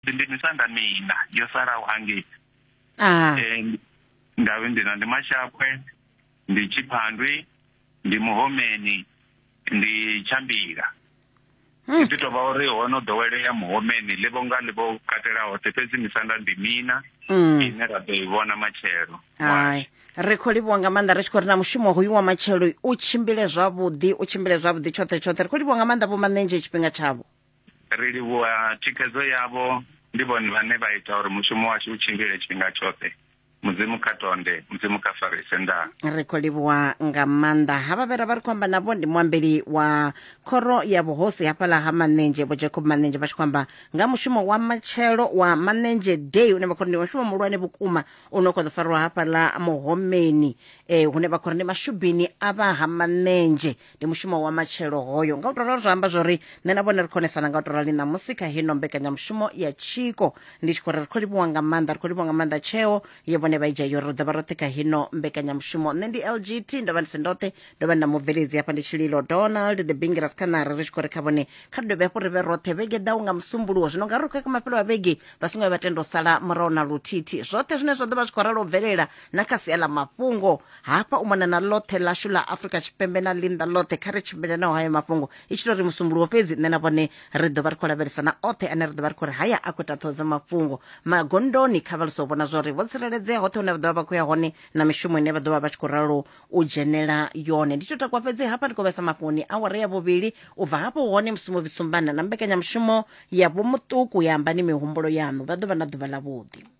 ndi ndi misanda mina yo salaho hangei ah. eh, ndavhe ndina ndi mashakwe ndi tshiphandwi ndi muhomeni ndi tshambila hmm. ndi tovha uri ho no ḓowelea muhomeni ḽi vho nga ḽi vho katela hoṱhe fhedzi misanda ndi mina hmm. ine ra ḓo i vhona matshelo ri khou livhuwa nga maanḓa ri tshi khou ri na mushumo hoyu wa matshelo u tshimbile zwavhuḓi u tshimbile zwavhuḓi tshoṱhe tshoṱhe ri khou livhuwa nga maanḓa vho maṋenzhe tshifhinga tshavho Ri livhuwa thikhedzo yavho, ndi vhone vhane vha ita uri mushumo washu u tshimbile tshifhinga tshoṱhe. Mudzimu kha tonde, Mudzimu kha farise. Ndaa. Ri khou livhuwa nga maanḓa havha vhe ra vha ri khou amba navho, ndi muambeli wa khoro ya vhuhosi hafhaḽa ha Manenzhe, Vho Jacob Manenzhe, vha tshi khou amba nga mushumo wa matshelo wa Manenzhe Day une vha khou ri ndi mushumo muhulwane vhukuma u no khou ḓo farwa hafhaḽa Muhomeni, eh, hune vha khou ri ndi mashubini a vha ha Manenzhe ndi mushumo wa matshelo hoyo nga u to ralo zwa amba zwori nṋe na vhone ri khonesana nga u to rali ṋamusi kha hino mbekanyamushumo ya tshiko ndi tshi khou ri ri khou livhuwa nga maanḓa ri khou livhuwa nga maanḓa tsheo ye vhone vha i dzhia yori ri ḓo vha roṱhe kha hino mbekanyamushumo nṋe ndi lgt ndo vha ndi si ndoṱhe ndo vha ndi na mubveledzi hafha ndi tshililo donald the bingiras khanari ri tshi khou ri kha vhone kha ri dovhe hafhu ri vhe roṱhe vhege ḓaho nga musumbuluwo zwino nga ri khou ya kha mafhelo a vhege vha songo ya vha tenda u sala murahu na luthithi zwoṱhe zwine zwa ḓo vha zwi khou ralo u bvelela na kha sia ḽa mafhungo hafha u mona na ḽoṱhe ḽashu ḽa afrika tshipembe na ḽinḓa ḽoṱhe kha ri tshimbile naho hayo mafhungo i tshi tou ri musumbuluwo fhedzi nṋe na vhone ri ḓo vha ri khou lavhelesa na oṱhe ane ri ḓo vha ri khou ri haya a khou ita ṱhoho dza mafhungo magondoni kha vha luso vhona zwori vho tsireledzea hoṱhe hune vha ḓovha vha khou ya hone na mishumo ine vha ḓovha vha tshi khou ralo u dzhenela yone ndi tshi takwa fhedzi hafha ndi khou vhesa mafhoni awara ya vhuvhili u bva hafho hone musi mu vhisumbana na mbekanyamushumo ya vhomuṱuku ya ambani mihumbulo yaṋu vha ḓovha na ḓuvha ḽa vhuḓi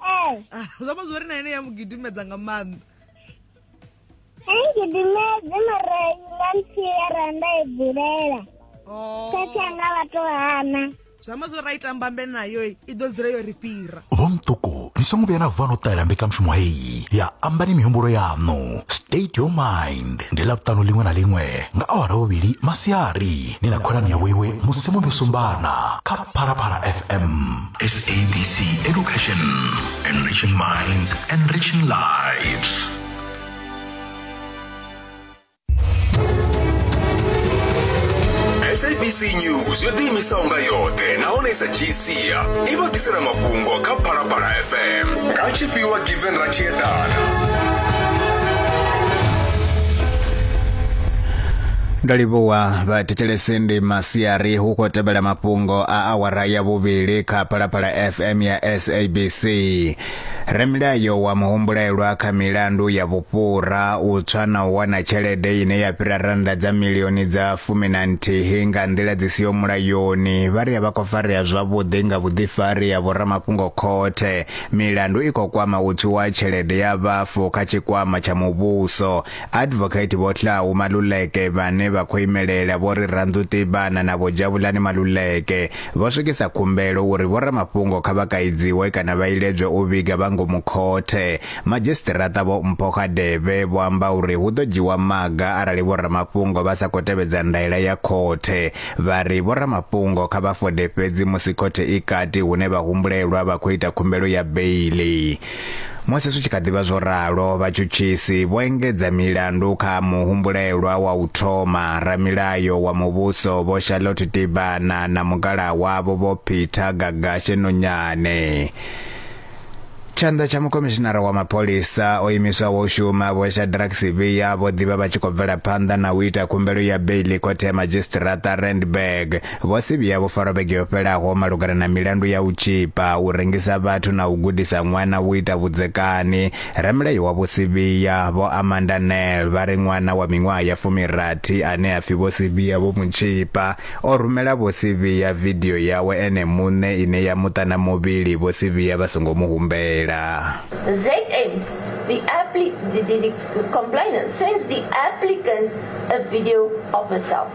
Eh. Ah, zwo amba zwori na ine ya mu gidimedza nga maanḓa angidimedze mara nga nthiera nda i bulela oh. khetha nga vhato hana zwi amba zwo ra i tambambe nayo i ḓo dzula yo ri fhira vhomṱuku ni songo vhuya na vuva no ṱalela mbekanyamushumo heyi ya ambani mihumbulo yaṋu state your mind ndi ḽavhuṱanu ḽiṅwe na ḽiṅwe nga awara vhuvhili masiari ni na khonani ya vhoiwe musi muno sumbana kha phalaphala fm SABC Education, enriching minds, enriching lives. sabc news yo ḓiimisa unga yoṱhe nahone sa gc i vha ḓisela mafhungo kha phalaphala fm nga tshifhiwa given ra tshi eḓana ndo livhuwa vhathetshelesi ndi masiari hu khou tevhela mafhungo a awara ya vhuvhili kha Phalaphala FM ya SABC. Ramilayo wa muhumbulelwa kha milandu ya vhufhura u tswa na u wana tshelede ine ya fhira rannda dza milioni dza fumi na nthihi nga nḓila dzi siho mulayoni vha ri a vha khou farea zwavhuḓi nga vhuḓifari ha vhoramafhungo khothe. Milandu i khou kwama u tswiwa ha tshelede ya vhafu kha tshikwama tsha muvhuso. Advocate Vho Hlau Maluleke vhane vha khou imelela Vho Rirandu Tibana na Vho Javulani Maluleke vho swikisa khumbelo uri vhoramafhungo kha vha kaidziwe kana vha iledzwe u vhiga vha ngomu khothe. Madzhisiṱiraṱa Vho Mpho Hadebe vho amba uri hu ḓo dzhiwa maga arali vhoramafhungo vha sa khou tevhedza ndaela ya khothe. Vha ri vhoramafhungo kha vha fode fhedzi musi khothe i kati hune vhahumbulelwa vha khou ita khumbelo ya beiḽi. Musi zwi tshi kha ḓi vha zwo ralo, vhatshutshisi vho engedza milandu kha muhumbulelwa wa u thoma, ramilayo wa muvhuso Vho Charlotte Tibana na mukalaha wavho Vho Peter Gagashe Nonyane. Tshanḓa tsha mukhomishinara wa mapholisa o imiswaho u shuma Vho Shadrack Sibiya vho ḓivha vha tshi khou bvela phanḓa na u ita khumbelo ya beiḽi khothe ya madzhisiṱiraṱa Randburg Vho si vhuya vho farwa vhege yo fhelaho malugana na milandu ya u tshipa, u rengisa vhathu na u gudisa ṅwana u ita vhudzekani. Ramulayo wa Vho Sibiya, Vho Amanda Nel, vha ri ṅwana wa miṅwaha ya fumirathi ane a pfi Vho Sibiya vho mu tshipa, o rumela Vho Sibiya vidio yawe ene muṋe ine ya mu ṱana muvhili Vho Sibiya vha songo mu humbela. ZM, The, appli the, the, the complainant sends the applicant a video of herself.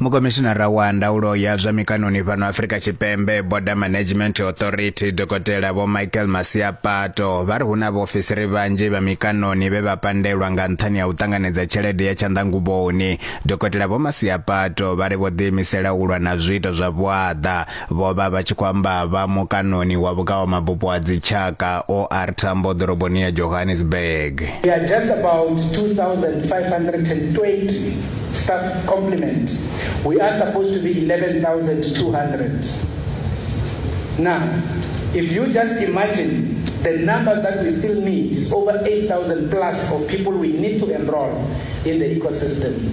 mukomishinara wa ndaulo ya zwa mikanoni fhano afrika tshipembe border management authority dokotela vho michael masiapato vha ri hu na vhaofisiri vhanzhi vha mikanoni vhe vha pandelwa nga nṱhani ha u ṱanganedza tshelede ya tshanḓanguvhoni dokotela vho masiapato vha ri vho ḓiimisela u lwa na zwiito zwa vhuaḓa Vho vha vha tshi khou amba vha mukanoni wa vhukawamabupo ha dzitshaka OR Tambo ḓoroboni ya Johannesburg. We are just about 2520 staff complement. We are supposed to be 11200. Now, if you just imagine the numbers that we still need is over 8000 plus of people we need to enroll in the ecosystem.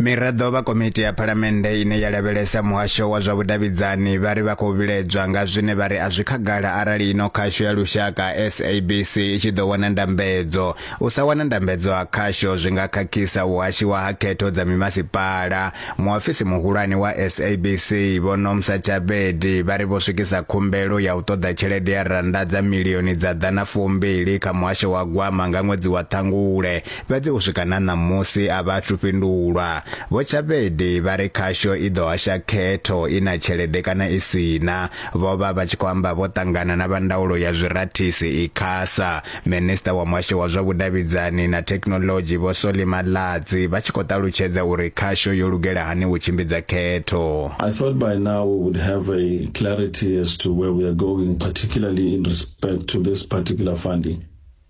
Miraḓo vha komiti ya phalamennde ine ya lavhelesa muhasho wa zwa vhudavhidzani vha ri vha khou vhilaedzwa nga zwine vha ri a zwi khagala arali ino khasho ya lushaka SABC i tshi ḓo wana ndambedzo. U sa wana ndambedzo ha khasho zwi nga khakhisa u hashiwa ha khetho dza mimasipala. Muofisi muhulwane wa SABC Vho Nomsa Chabedi vha ri vho swikisa khumbelo ya u ṱoḓa tshelede ya rannda dza milioni dza ḓana fumbili kha muhasho wa gwama nga ṅwedzi wa Ṱhangule Fhedzi u swika na ṋamusi a vha athu fhindulwa. Vho Tshapedi vha ri khasho i ḓo hasha khetho i na tshelede kana i si na. Vho vha vha tshi khou amba vho ṱangana na vha ndaulo ya zwirathisi, Icasa, Minisiṱa wa Muhasho wa zwa Vhudavhidzani na Thekhinoḽodzhi Vho Solly Malatsi vha tshi khou ṱalutshedza uri khasho yo lugela hani u tshimbidza khetho. I thought by now we would have a clarity as to where we are going, particularly in respect to this particular funding.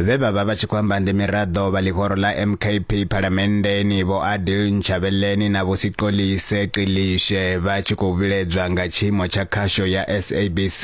vhe vha vha vha tshi khou amba ndi miraḓo vha ḽihoro ḽa mkp phalamenndeni vho adil ntshavheleni na vho siqolise qilishe vha tshi khou vhiledzwa nga tshiimo tsha khasho ya sabc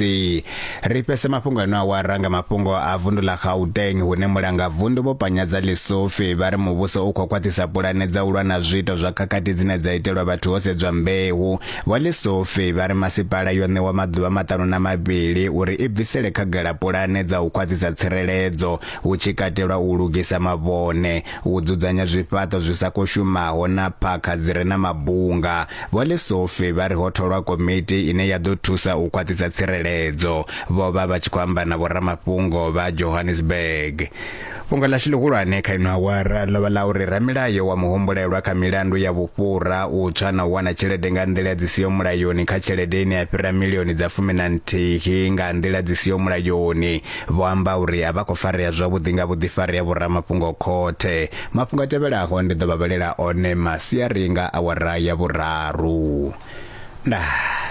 ri fhese mafhungo eno awara nga mafhungo a vundu ḽa gauteng hune mulanga vundu vho panyadza ḽisofi vha ri muvhuso u khou khwaṱhisa pulane dza u lwa na zwiito zwa khakhathi dzine dza itelwa vhathu ho sedzwa mbeu Vho Lesofe vha ri masipala yo ṋewa maḓuvha maṱanu na mavhili uri i bvisele khagala pulane dza u khwaṱhisa tsireledzo, hu tshi katelwa u lugisa mavhone, u dzudzanya zwifhaṱo zwi sa khou shumaho na phakha dzi re na mabunga. Vho Lesofe vha ri ho tholwa komiti ine ya ḓo thusa u khwaṱhisa tsireledzo. Vho vha vha tshi khou amba na vhoramafhungo vha Johannesburg. Fhungo ḽashu ḽihulwane kha ino awara ḽo vha ḽa uri ramilayo wa muhumbulelwa kha milandu ya vhufhura, u tswa na u wana tshelede nga nḓila dzi siho mulayoni kha tshelede ine ya fhira milioni dza fumi na nthihi nga nḓila dzi siho mulayoni, vho amba uri a vha khou farea zwavhuḓi nga vhuḓifari ha vhoramafhungo khothe. Mafhungo a tevhelaho ndi ḓo vha vhalela one masiari nga awara ya vhuraru. Ndaa.